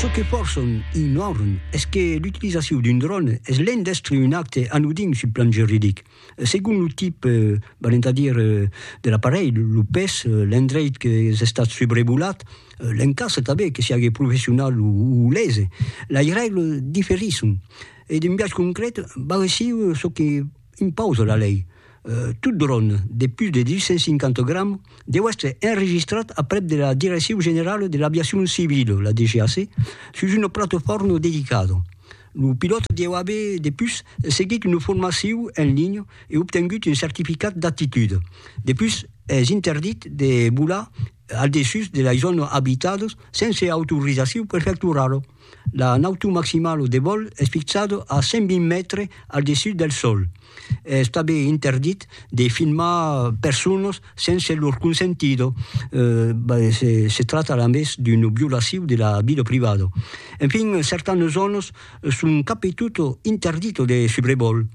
Çò que pòrçon ignòrn es que l'utilizacion d'un dròn es l'en d'èstre un acte anodin sul plan juridic, segon lo tip, valent a dire, de l'aparelh, lo pes, l'endreit que es estat subrevolat, l'en cas tanben que siágue professional o lese. Lei règle diferisson e d'un biais concret barresiu çò que. Impausa la lei, tot dròn de pus de 250 grams deu èstre enregistrat aprèp de la Direccion Generala de l'Aviacion Civila, la DGAC, sus una platofòrna dedicada. Lo pilòt deu aver depus seguit una formacion en linha e obtengut un certificat d'aptitude. Depus es interdit de volar al dessús de las zònas abitadas sense autorizacion prefectorala. La nautor maximala de vòl es fixada a 120 mètres al dessús del sòl. Es tanben interdit de filmar personas sense lor consentida, se tracta a més d'una violacion de la vida privada. Enfin, certanas zònas son cap e tot interditas de subrevòl,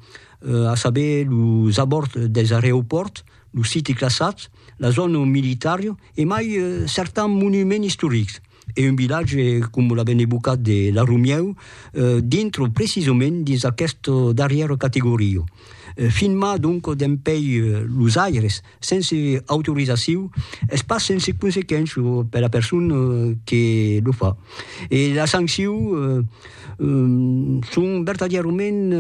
a saber, los abòrds dels areopòrts, los siti classats, la zòna militària e mai certans monuments istorics. e un vilatge com la ben evocat de La Romieu dintre precisament dins aquesta darrièra categoria. Filmar donc dempèi los aires sense autorizacion es pas sense consequéncia per la persona que lo fa e las sanccions son vertadièrament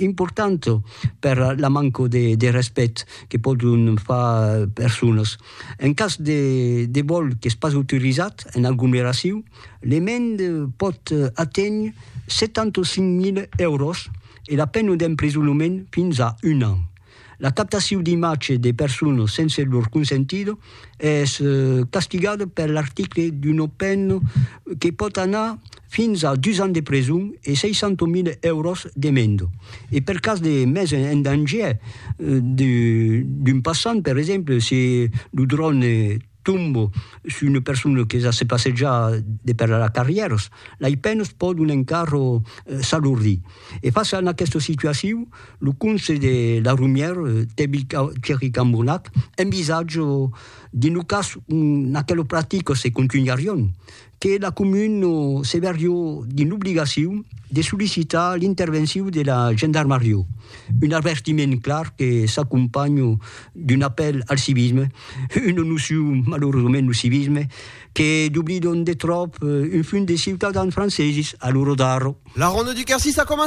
importantas per la manca de respècte que pòdon far personas En cas de vòl qu'es pas autorizat en aglomeracion, l'emend pòt aténher 75.000 èuros e la pena d'emprisonament fins a un an. La captacion d'imatge de personas sense lor consentida es castigada per l'article d'una pena que pòt anar fins a dus ans de preson e 600.000 èuros d'emenda, e per cas de mes en dangièr d'un passant, per exemple, se lo dròne tomba sus una persona que ja se passeja de per la carrièras, lei penas pòdon encara s'alordir. E fàcia a aquesta situacion, lo conselh de la Romièra, Thierry Cambournac, envisatja de nos cas, aquelas practicas se contunharián, que la comuna se vèrió dins l'obligacion de sollicitar l'intervencion de la gendarmarió, un avertiment clar que s'acompanha d'un apèl al civisme, una nocion, malauradament, lo civisme, que doblidon de tròp un funt de ciutadans franceses a lo rodar. La Ronda du Quercy, ça commence!